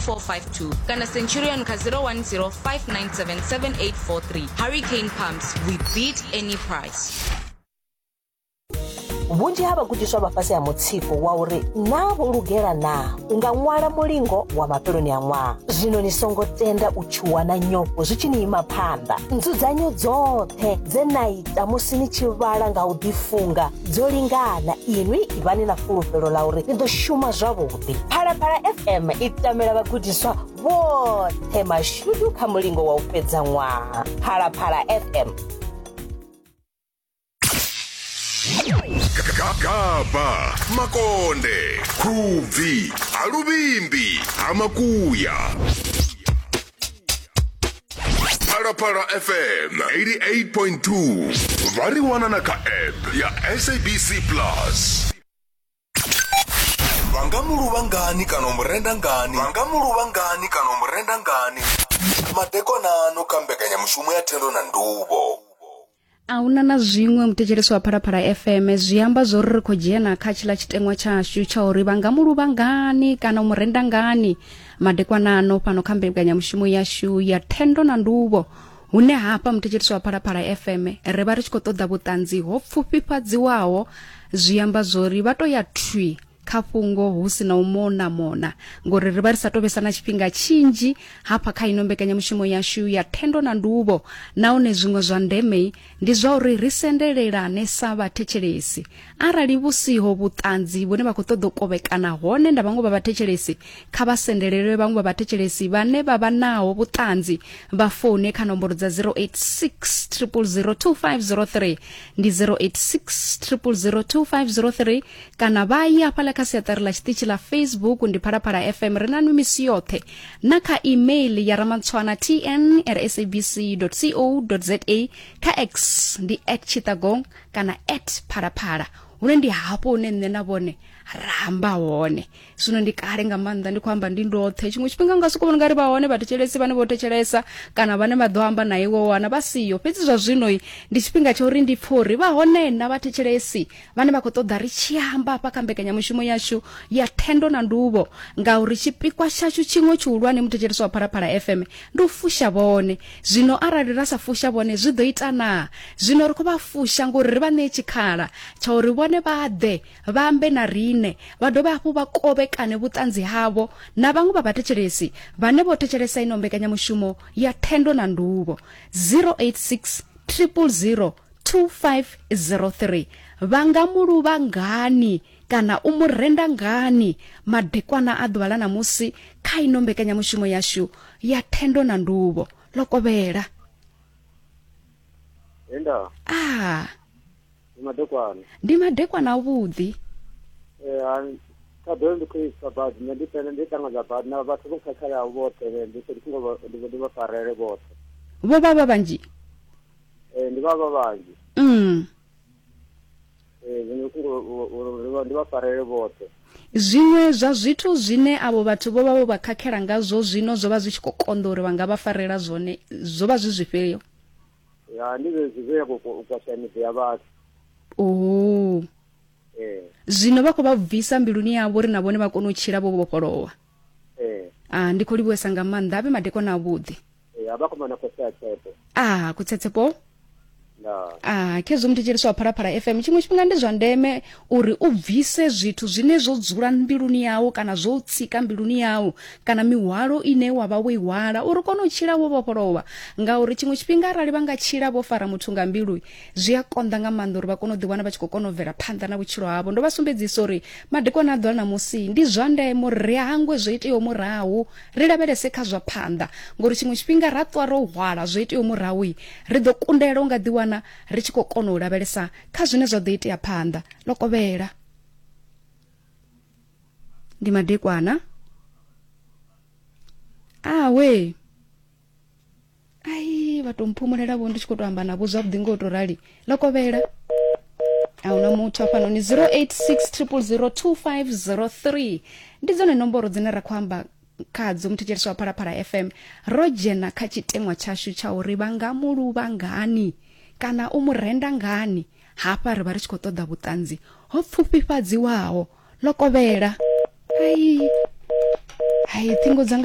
452 kana centurion kha 010 597 7843 hurricane pumps we beat any price vhunzhi ha vhagudiswa vha fhasi ha mutsiko wa uri naa vho lugela naa u nga ṅwala mulingo wa mafheloni a ṅwaha zwino ni songo tenda u tshuwa na nyofho zwi tshi ni ima phanḓa nzudzanyo dzoṱhe dze na ita musi ni tshi vhala nga u ḓifunga dzo lingana inwi ivhani na fulufhelo ḽa uri ni ḓo shuma zwavhuḓi vhuḓi phalaphala fm i tamela vhagudiswa vhoṱhe mashudu kha mulingo wa u fhedza ṅwaha phalaphala fm gagaba makonde khubvi ha luvhimbi ha makuya phalaphala fm 88.2 vha ri wana na kha app ya sabc plus vha nga mu luvha ngani kana u mu renda ngani vha nga mu luvha ngani kana u mu renda ngani madekonano kha mbekanyamushumo ya thendo na nduvho a huna na zwiṅwe muthetshelesi wa phalaphala fm zwi amba zwo ri ri khou dzhena kha tshila tshiteṅwa tshashu tsha uri vha nga muluvha ngani kana u mu renda ngani madekwanano fhano kha mbekanyamushumo yashu ya thendo na nduvho hune hafha muthetshelisi wa phalaphala fm ri vha ri tshi khou ṱoḓa vhuṱanzi ho pfufhifhadziwaho zwi amba zwori vha to ya thwi kha fhungo hu si na u mona mona ngori ri vha ri sa tovhesa na tshifhinga tshinzhi hafha kha ino mbekanyamushumo yashu ya thendo na nduvo nahone zwiṅwe zwa ndeme ndi zwa uri ri sendelelane sa vhathetshelesi arali vhu siho vhuṱanzi vhune vha khou ṱoḓa u kovhekana hone nda vhaṅwe vha vhathetshelesi kha vha sendelelwe vhaṅwe vha vhathetshelesi vhane vha vha naho vhuṱanzi vha foune kha nomboro dza 0860002503 ndi 0860002503 kana vha ye afhaḽa kha siaṱari ḽa tshiṱitshi ḽa facebook ndi phalaphala fm ri na nwi misi yoṱhe na kha email ya ramantswana tn rsabc co za kha x ndi at chitagong kana at phalaphala hune ndi hafho hune nṋe na vhone ra amba hone zwino ndi kale nga maanḓa ndi khou amba ndi ndoṱhe tshiṅwe tshifhinga nga soko vhona nga ri vha hone vhathetshelesi vhane vho thetshelesa kana vhane vha ḓo amba na iwe wana vha siyo fhedzi zwa zwino ndi tshifhinga tsha uri ndi pfhe uri vha hone na vhathetshelesi vhane vha khou ṱoḓa ri tshi amba hafha kha mbekanyamushumo yashu ya thendo na nduvho ngauri tshipikwa tshashu tshiṅwe tshihulwane muthetshelesi wa phalaphala fm Ndi u fusha vhone. Zwino arali ra sa fusha vhone zwi ḓo ita naa? Zwino ri khou vha fusha ngori ri vha ṋee tshikhala tsha uri vhone vha ḓe vha ambe na riṋe, vha dovhe hafhu vha kovhekane vhuṱanzi havho na vhaṅwe vha vhathetshelesi vhane vho thetshelesa ino mbekanyamushumo ya Thendo na Nduvho. 086 000 2503 Vha nga mu luvha ngani? kana u mu renda ngani madekwana a ḓuvha ḽa ṋamusi kha ino mbekanyamushumo yashu ya thendo na nduvho ḽo kovhela enda a ndi madekwana ndi madekwana avhuḓi ṱhaḓelo ndi khou isa badi nṋe ndi pele ndi ṱangadza badi na vhathu vho khakhalaho vhoṱhe ndi ndi songo ndi vha farele vhoṱhe vho vha vha vhanzhi ee ndi vha vha vhanzhi mm zwiṅwe zwa zwithu zwine avho vhathu vho vha vho vha khakhela ngazwo zwino zwo vha zwi tshi khou konḓa uri vha nga vha farela zwone zwo vha zwi zwifhio ya ndi zwezwi zwe ya kwasha miḓi ya vhathu oo zwino vha khou vha bvisa mbiluni yavho uri na vhone vha kone u tshila vho vhofholowa ee ah ndi khou livhuwesa nga maanḓa avhe madekwana avhuḓi ee a vha khou mana khotsi a tshepo ah kutsetsepoo nda ah khezwo muthetsheliso wa phalaphala fm tshiṅwe tshifhinga ndi zwa ndeme uri u bvise zwithu zwine zwo dzula mbiluni yau kana zwo u tsika mbiluni yau kana mihwalo ine wa vha wo i hwala uri u kone u tshila wo vhofholova ngauri tshiṅwe tshifhinga arali vha nga tshila vho fara muthu nga mbilu zwi a konḓa nga maanḓa uri vha kone u ḓiwana vha tshi khou kona u bvela phanḓa na vhutshilo havho ndo vha sumbedzisa uri madekwana a ḓola na musi ndi zwa ndeme uri ri hangwe zwo iteaho murahu ri lavhelese kha zwa phanḓa ngori tshiṅwe tshifhinga ra ṱwa ro hwala zwo iteaho murahu ri ḓo kundela u nga ḓiwana ri tshi khou kona u lavhelesa kha zwine zwa ḓo itea phanḓa ḽo kovhela ndi madekwana awe ah, ai vha to mphumulela vho ndi tshi khou to amba navho zwavhuḓi ngo to rali ḽo kovhela a huna muthu hafhanoni 0860002503 ndi dzone nomboro dzine ra khou amba khadzo muthetshelesi wa phalaphala fm ro dzhena kha tshiteṅwa tshashu tsha uri vha nga mu luvha ngani kana u mu renda ngani hafha ri vha ri tshi khou ṱoḓa vhuṱanzi ho pfufhifhadziwaho ḽo kovhela ai ai ṱhingo dzanga